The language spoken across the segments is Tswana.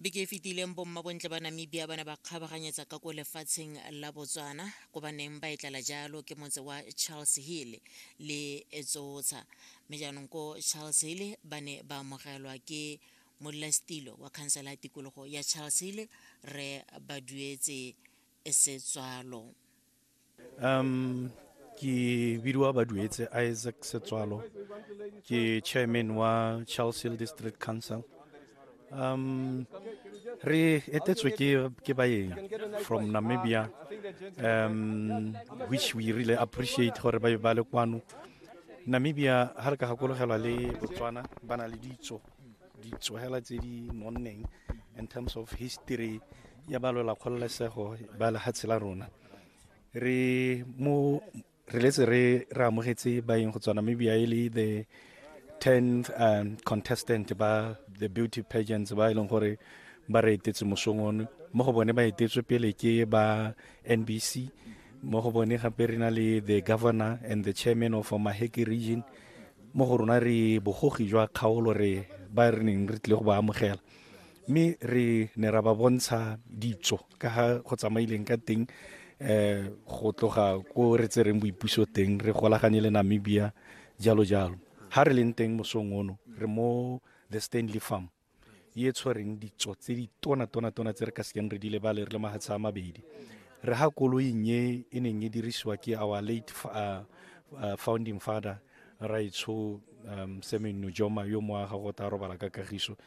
beke e fetileng bommabontle ba namibia ba ne ba kgabaganyetsa ka ko lefatsheng la botswana ko ba neng ba e tlala jalo ke motse wa charles hill le etsotsha mme jaanong ko charles hill ba ne ba amogelwa ke modulasetilo wa khansela ya tikologo ya charles hill re ba duetse setswalo um ke bidiwa baduetse isaac setswalo ke chairman wa charles hill district council um re etetswe ke ke baeng from namibia um which we really appreciate gore ba ba le kwano namibia ha re ka gakologelwa le botswana ba na le ditso ditsogela tse di nonneng in terms of history ya balwela kgololesego ba lefatshe la rona re mo re letse re re amogetse baeng go tswa namibia e le the 10 um, contestant ba the beauty pageants ba e leng gore ba re etetse mosong one mo go bone ba etetswe pele ke ba nbc mo go bone gape re na le the governor and the chairman of maheki region mo go rona re bogogi jwa kgaolo re ba re neng re tlile go ba amogela mme re ne ra ba bontsha ditso ka ga go tsamaileng ka teng um go tloga ko re tsereng boipuso teng re golaganye le namibia jalo jalo ha re leng teng mosong ono re mo the stanley farm e e tshwereng ditso tse di tona tona tona tse re ka sekeng re di lebale re le mahatsha a mabedi re ha koloing e e neng e dirisiwa ke our late uh, uh, founding father raitsho um, semen nojoma yo mo aga go ta robala ka kagiso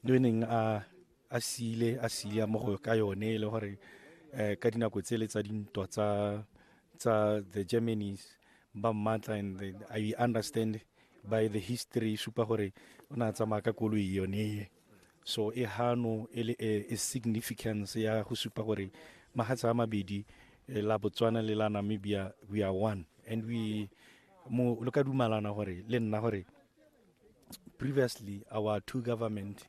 yo e neng a a siile a siile mo go ka yone e le gore um ka dinako tse le tsa dintwa tsa tsa the germanys ba mmatla and i understand by the history e supa gore o ne a tsamaya ka koloi yone e so e hano e le e, e significance ya go supa gore magatsa a mabedi eh, la botswana le la namibia we are one and we mo lo ka dumalana gore le nna gore previously our two government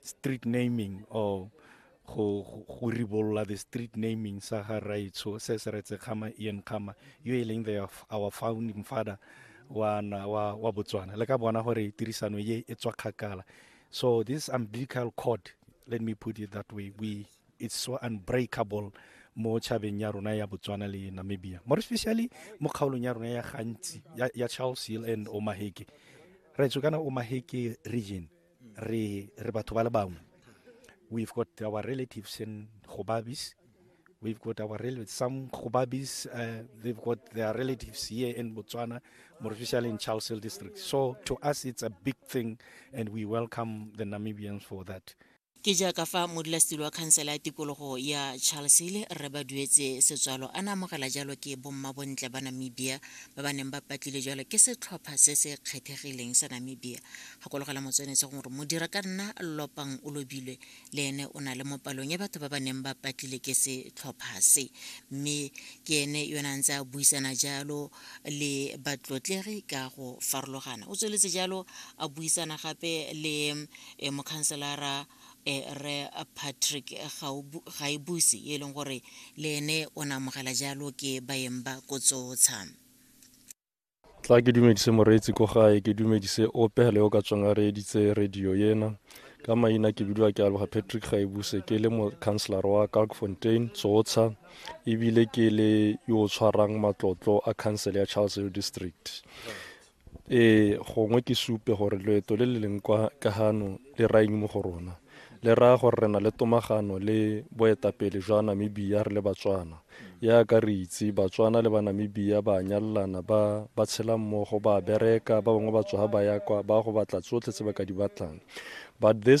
street naming or go go ribolola the street naming sa ga raitsho se se retse kgama ian kgama yo e leng the our founding father wa na wa wa botswana le ka bona gore tirisano ye e tswa kgakala so this umbilical cord let me put it that way we it's so unbreakable mo chabeng ya rona ya botswana le namibia more especially mo kgaolong ya rona ya gantsi ya, ya charles hill and omaheke raitsho kana omaheke region re re batho ba le bangwe we've got our relatives in Gobabis we've got our relatives some Gobabis uh, they've got their relatives here in Botswana more especially in Charles Hill district so to us it's a big thing and we welcome the Namibians for that ke jaaka fa modulasetilo wa khansela ya tikologo ya charles hill rre ba duetse setswalo a na amogela jalo ke bomma bontle ba namibia ba ba neng ba patlile jalo ke setlhopha se se kgethegileng sa namibia Gakologelwa Motswenetse gore modira ka nna lopang o lobilwe le ene o na le mo palong ya batho ba ba neng ba patlile ke setlhopha se mme ke ene yone a ntse a buisana jalo le batlotlegi ka go farologana o tsweletse jalo a buisana gape le eh, mokhanselara eh, re patrick gaebuse e leng gore le ene o ne amogela jalo ke baeng ba kotsotsha tla ke dumedise moreetsi ko gae ke dumedise ope le o ka tswang a reeditse radio ena ka maina ke bidiwa ke aloga patrick gaebuse ke le mocouncelor wa kalkfontein tsotsha ebile ke le yo o tshwarang matlotlo a council ya charles hill district ee gongwe ke supe gore loeto le le leng kwa ka gano le raeng mo go rona le raya gore re na le tomagano le boetapele jwa Namibia re le Batswana. Yaaka re itse, Batswana le Banamibia ba a nyalelana, ba ba tshela mmogo, ba a bereka, ba bangwe ba tsoga ba ya kwa, ba go batla tsotlhe tse ba ka di batlang. But this